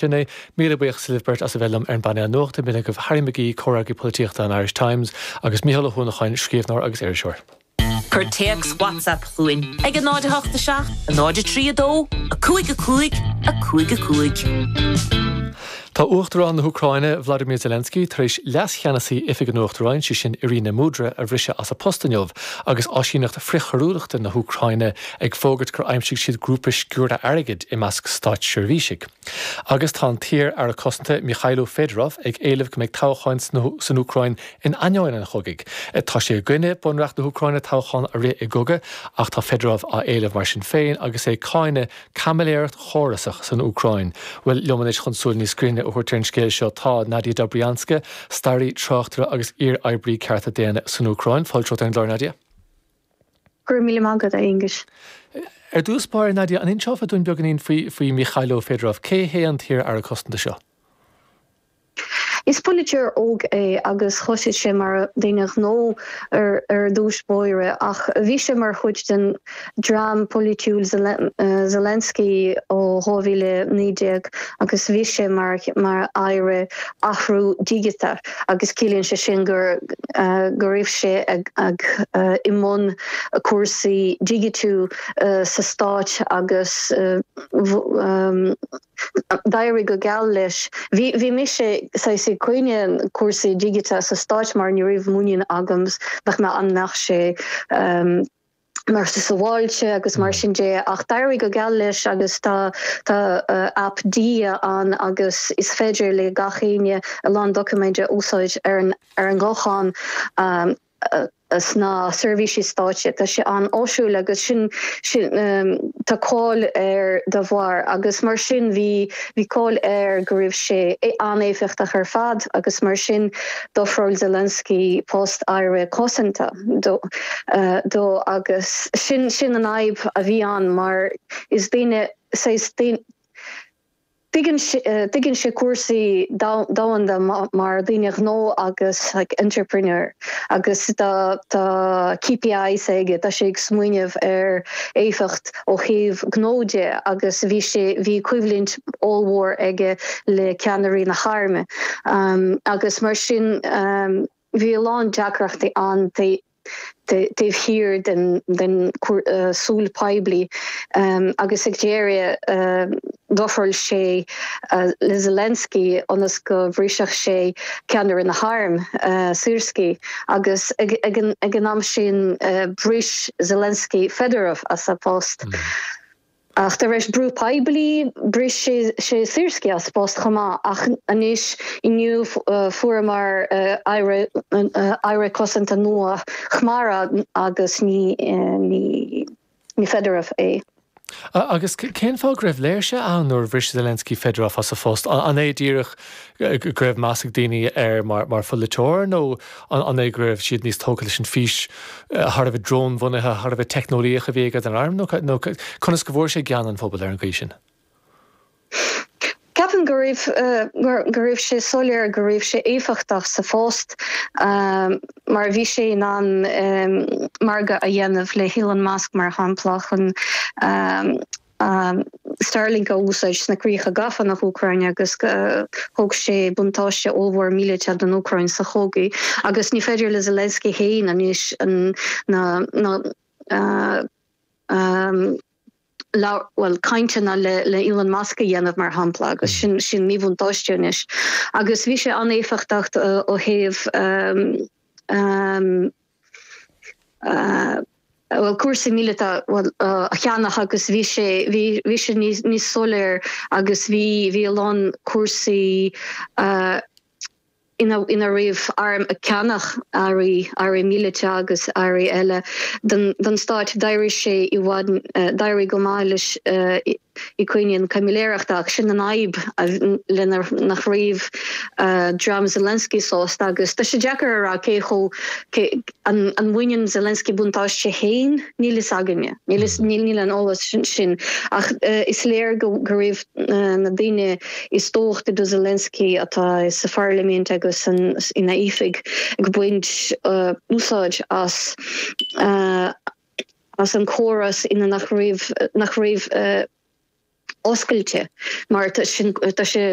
Sin é. Míle buíochas libh beirt as a bheith liom ar an bpainéal nuachta. Maith agaibh Harry McGee, Comhfhreagraí Polaitíochta an Irish Times, agus Mícheál Ó hUanacháin, scríobhneoir agus iriseoir. Cuir téacs WhatsApp chugainn ag 08 7 03 2 5 5 5 5. Tá Uachtarán na hÚcráine, Volodymyr Zelensky, tar éis Leas-Cheannasaí Oifig an Uachtaráin, sé sin Iryna Mudra, a bhriseadh as a post inniu agus áisíneacht frithchoiriúlachta na hÚcráine ag fógairt gur aimsigh siad grúpa sciúrtha airgid i measc státseirbhísigh. Agus tá an t-iar-Aire Cosanta, Mykhailo Fedorov, ag éileamh go mbeidh toghcháin san Úcráin in ainneoin an chogaidh. Tá sé i gcoinne bunreacht na hÚcráine toghchán a rith i gcogadh ach tá Fedorov á éileamh mar sin féin agus é ag cáineadh caimiléireacht chórasach san Úcráin. Bhuel, liom anois chun súil níos grinne a thabhairt ar an scéal seo, tá Nadia Dobrianska, staraí, tráchtaire agus iar-oibrí cearta daonna san Úcráin. Fáilte romhat ar an gclár, Nadia. Go raibh míle maith agat, a Aonghuis. Ar dtús báire, Nadia, an inseofá dúinn beagáinín faoi Mykhailo Fedorov? Cé hé an t-iar-aire cosanta seo? Is polaiteoir óg é agus thoisigh sé mar dhuine gnó ar dtús báire ach bhí sé mar chuid den dream polaitiúil Zelensky ó 2019 agus bhí sé mar mar aire athrú digiteach agus ciallaíonn sé sin gur go raibh sé ag i mbun cúrsaí digitiú sa Stát agus d'éirigh go geal leis. Bhí bhí mise saghas ag cáineadh cúrsaí digiteacha sa Stáit mar ní raibh muinín agam nach mbeadh an mbeadh sé mar sa sabháilte agus mar sin de, ach d'éirigh go geal leis agus tá tá aip Diia ann agus is féidir le gach éinne a lán doiciméid a úsáid ar an ar an ghuthán sna seirbhísí stáit. Tá sé an-áisiúil agus sin sin tá cáil air de bharr agus mar sin bhí bhí cáil air go raibh sé an-éifeachtach ar fad agus mar sin d'ofráil Zelensky post aire cosanta dó agus sin an fhadhb a bhí ann mar is duine saghas tuigeann sé cúrsaí domhanda mar dhuine gnó agus like entrepreneur agus tá KPIs aige tá sé ag smaoineamh ar éifeacht ó thaobh gnó de agus bhí sé, bhí coimhlint ollmhór aige le ceannairí na hairme agus mar sin bhí a lán deacrachtaí ann taobh thiar den súil poiblí agus ag deireadh d'ofráil sé le Zelensky ionas go mbrisfeadh sé ceannaire na hairm, Syrskyi. Agus ag an am sin, bhris Zelensky Fedorov as a phost. Ach tar éis brú poiblí, bhris sé Syrskyi as a phost chomh maith. Ach anois, inniu, fuaireamar Aire Cosanta nua, Khmara, agus ní Ní Fedorov é. Agus cén fáth go raibh léirse ann nuair a bhris Zelensky Fedorov as a phost? An é díreach go raibh meas ag daoine air mar pholaiteoir nó an é go raibh siad níos tógtha leis an bhfís thar a bheith drónbhunaithe, thar a bheith teicneolaíoch a bhí aige don arm? Nó conas go bhfuair sé gean an phobail ar an gcaoi sin? Ceapaim go raibh, go raibh sé soiléir go raibh sé éifeachtach sa phost mar bhí sé in ann margadh a dhéanamh le hElon Musk, mar shampla, chun Starlink a úsáid sna críocha gafa, na hÚcráine, agus thug sé buntáiste ollmhór míleata don Úcráin sa chogadh agus ní féidir le Zelensky féin anois na bhuel, cainteanna le Elon Musk a dhéanamh, mar shampla, agus sin, sin míbhuntáiste anois. Agus bhí sé an-éifeachtach ó thaobh, bhuel, cúrsaí míleata, bhuel, a cheannach agus bhí sé, bhí, bhí sé níos, níos soiléir agus bhí, bhí a lán cúrsaí, ina raibh airm ag ceannach earraí, earraí míleata agus earraí eile, don stáit. D'éirigh sé i bhfad, d'éirigh go maith leis i gcoinne an chaimiléireachta ach sin an fhadhb lena nach raibh dream Zelensky sásta agus tá sé deacair a rá cé chomh, an mbaineann Zelensky buntáiste féin, níl fhios againne, níl an eolas sin ach is léir go raibh na daoine is tábhachtaí do Zelensky, atá sa pharlaimint agus ina oifig ag baint úsáid as as an córas ina nach raibh nach raibh oscailte mar tá sin tá sé